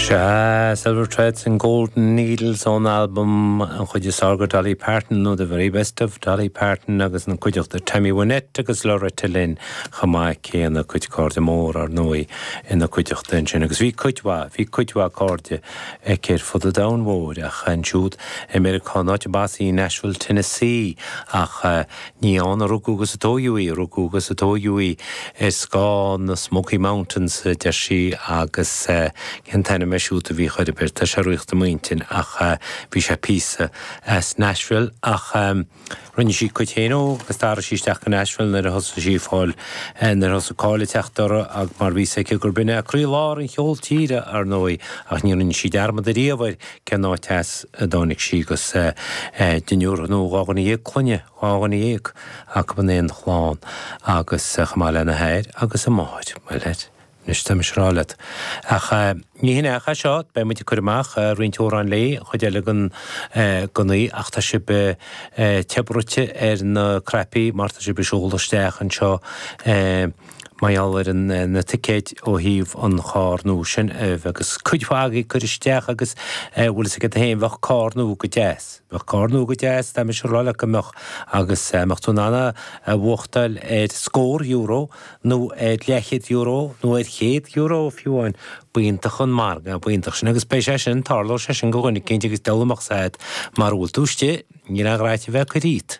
Sea, Silver Threads and Golden Needles ón albam an chuid is fearr de Dolly Parton nó The Very Best of Dolly Parton agus ina cuideachta Tammy Wynette agus Loretta Lynn chomh maith céanna a cuid cairde mór ar ndóigh ina cuideachta ansin agus bhí cuid mhaith, bhí cuid mhaith cairde aici ar fud an domhain mhóir ach ansiúd i Meiriceá, an áit arb as í, Nashville, Tennessee ach eh, Ní ann a rugadh agus a tóigeadh í, rugadh agus tóigeadh í i scáth na Smoky Mountains, a deir sí, agus cén t-ainm é siúd a bhíodh uirthi, b'fhéidir, tá sé ag tíocht i m'intinn ach bhí sé píosa as Nashville ach rinne sí a cuid féin dó agus d'athraigh sí isteach go Nashville nuair a thosaigh sí ag fáil, nuair a thosaigh cáil ag teacht uirthi ach mar bhí 's aici gurb in é croí lár an cheol tíre, ar ndóigh, ach ní rinne sí dearmad ariamh ar cén áit as a dtáinig sí agus deichniúr nó dhá dhuine dhéag clainne, dhá dhuine dhéag acu in aon chlann agus chomh maith lena hathair agus a máthair. Bhuel, anois tá mise ag rá leat. Ach ní shin é ach é seo, beidh muid ag cur amach roinnt amhrán léi, an chuid eile den oíche ach tá sibh te bruite ar na cnaipí mar tá sibh ag seoladh isteach anseo. mar gheall ar na ticéid ó thaobh an charr nua sin uaibh agus cuid mhaith agaibh ag cur isteach agus bhfuil fhios agat féin bheadh carr nua go deas bheadh carr nua go deas tá mise ag rá leat go mbeadh agus dá mbeadh tú in ann a bhuachtáil ar scór euro nó ar leithchéad euro nó ar chéad euro fiú amháin b'iontach an margadh b'iontach sin agus beidh sé sin tarlóidh sé sin go dhuine eicínt agus diail amach said mara bhfuil tú istigh níl aon ghraithe a bheith ag cur iad.